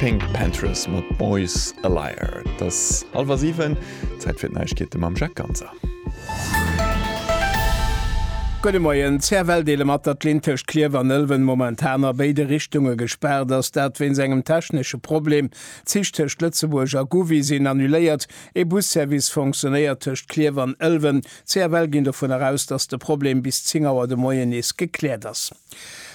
Pink Panthers mat Boys a Liar. Et ass hallwer siwen, Zäit fir d'Neiegkeete mam Jacques Ganser. Gudde Moien. CFL deele mat, datt d'Linn tëscht Klierf an Ëlwen momentan a béide Richtunge gespaart ass. Dat wéinst engem technesche Problem. D'Zich tëscht Lëtzebuerg a Gouvy sinn annuléiert. Ee Busservice fonctionéiert tëscht Klierf an Ëlwen. D'CFL ginn dovunner aus, datt de Problem bis 10 Auer de Moien nees gekläert ass.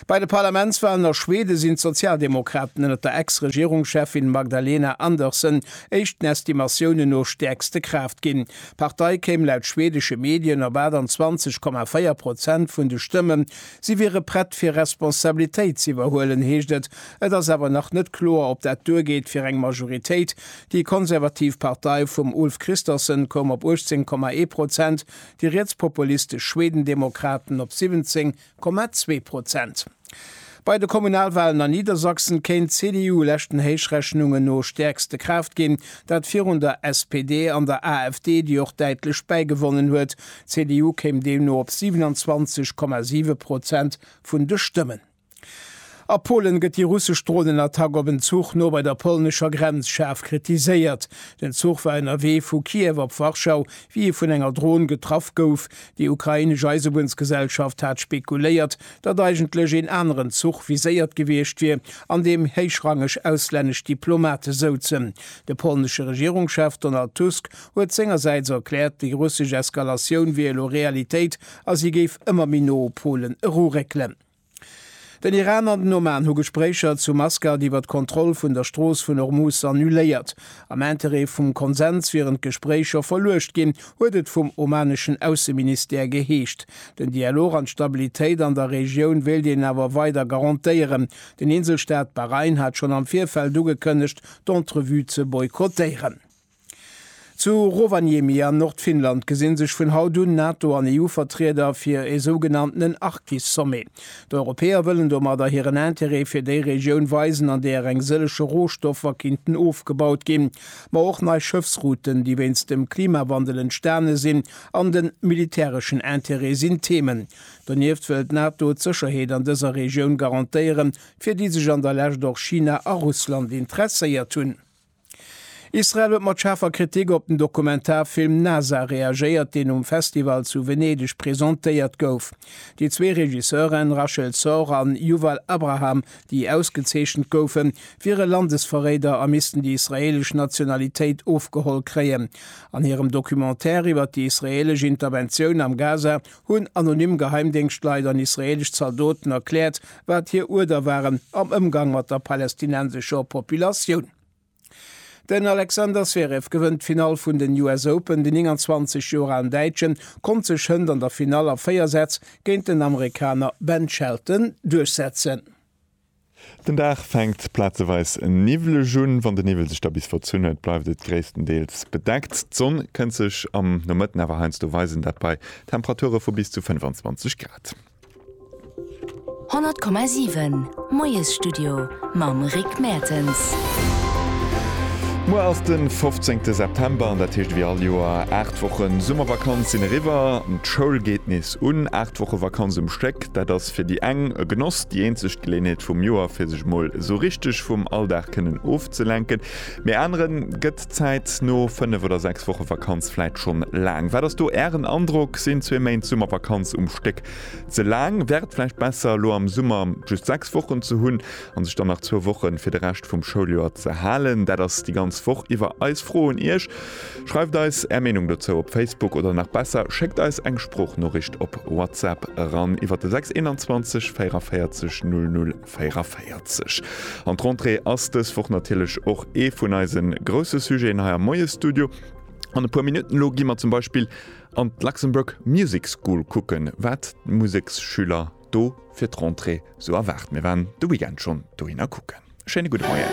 Bei de Parlamentswalen a Schwede sinn d'Sozialdemokraten ënner der Ex-Regierungscheffin Magdalena Andersson éischt den Estimatiounen no stäerkste Kraaft ginn. D'Partei kéim laut schwedesche Medien op 28,4 Prozent vun de Stëmmen. Si wiere prett fir Responsabilitéit z'iwwerhuelen, heescht et. Et ass awer nach net kloer, ob dat duergeet fir eng Majoritéit, Déi konservativ Partei vum Ulf Kristersson koum op 18 Komma ee Prozent, déi rietspopulistesch Schwedendemokraten op 17 Komma zwee Prozent. Bei de Kommunalwalen an Niedersachsen kéint d'CDU leschten Héichrechnungen no stäerkste Kraaft ginn, dat virun der SPD an der AfD, déi och däitlech bäigewonnen huet. D'CDU kéim deemno op 27 Komma siwe Prozent vun de Stëmmen. A Polen gëtt déi russesch Dronenattack op en Zuch no bei der polnescher Grenz schaarf kritiséiert. Den Zuch war ënnerwee vu Kiew op Warschau, wéi e vun enger Dron getraff gouf. Déi ukrainesch Eisebunnsgesellschaft hat spekuléiert, datt eigentlech een aneren Zuch viséiert gewiescht wier, an deem héichrangeg auslännesch Diplomate souzen. De polnesche Regierungschef Donald Tusk huet sengersäits erkläert, déi russesch Eskalatioun wier elo Realitéit a si géif ëmmer méi no u Polen eruréckelen. Den Iran an den Oman hu Gespréicher zu Maskat iwwer d'Kontroll vun der Strooss vun Ormus annuléiert. Am Interêt vum Konsens wieren d'Gespréicher verluecht ginn, huet et vum omaneschen Ausseministère geheescht. Den Dialog an d'Stabilitéit an der Regioun wéilt een awer weider garantéieren. Den Inselstaat Bahrain hat schonn am Virfeld ugekënnegt, d'Entrevue ze boykottéieren. Zu Rovaniemi an Nordfinnland gesi sech vun haut un Nato an EU-Vertrieder fir ee sougenanntenen Arktis-Sommet. D'Europäer wëllen domadder hiren Interêt fir déi Regioun weisen, an där eng sëllege Rohstoffer kinnten ofgebaut ginn, ma och nei Schëffsrouten, déi wéinst dem Klimawandel entstane sinn, an de militäreschen Interêt sinn Themen. Donieft wëll d'Nato d'Sécherheet an dëser Regioun garantéieren, fir déi sech an der Lescht och China a Russland interesséiert hunn. Israel huet mat schaarfer Kritik op den Dokumentarfilm Nasa reagéiert, deen um Festival zu Venedeg presentéiert gouf. Déi zwee Regisseuren, Rachel Sor an Yuval Abraham, déi ausgezeechent goufen, wiere Landesverréider a missten déi israeelesch Nationalitéit ofgeholl kréien. An hirem Documentaire iwwer déi israeelesch Interventioun am Gaza hunn anonym Geheimdéngschtleit an israeelesch Zaldoten erkläert, wat hir Uerder waren am Ëmgang mat der palästinensescher Populatioun. Den Alexander Zverev gewënnt d'Finall vun den US Open. Den 29 Joer alen Däitsche konnt sech hënt an der Finall a 4 Sätz géint den Amerikaner Ben Shelton duerchsetzen. Den Dag fänkt plazeweis niwwleg un. Wann de Niwwel sech da bis verzunn huet, bleift et gréisstendeels bedeckt. D'Sonn kënnt sech am Nomëtten awer heiansdo weisen, dat bei Temperature vu bis zu 25 Grad. 100,7 Moiesstudio mam Rick Mertens. Muer ass de 15 September an dat heescht ewéi all Joer, 8 Wochen Summervakanz sinn eriwwer. D'Schoul geet nees un. 8 Woche Vakanz um Stéck, dat ass. Fir déi eng e Genoss, déi eenzeg Geléenheet vum Joer fir sech mol esou richteg vum Alldag kënnen ofzelenken. Mee aneren gëtt d'Zäit no 5 oder 6 Woche Vakanz vläit schonn laang. Wat ass do Ären Androck? Sinn zwee Méint Summervakanz um Stéck ze laang? Wär et vläicht besser elo am Summer just 6 Wochen ze hunn? an sech dann nach zwou Wochen fir de Rescht vum Schouljoer ze halen. Dat ass déi ganz Woch iwwer eis Fro un Iech. Schreift eis Är Meenung dozou op Facebook oder nach besser, schéckt eis eng Sproochnoricht op WhatsApp eran iwwer de 621 44 00 44. An d'Rentrée ass dës Woch natierlech och ee vun eise grousse Sujeten hei am Moiesstudio. An e puer Minutten elo gi mer zum Beispill an d'Luxembourg Music School kucken, wat d'Museksschüler, Do fir d'Rentrée, sou erwaart. Mir waren de Weekend schonn dohinner kucken. Schéine gudde Moien.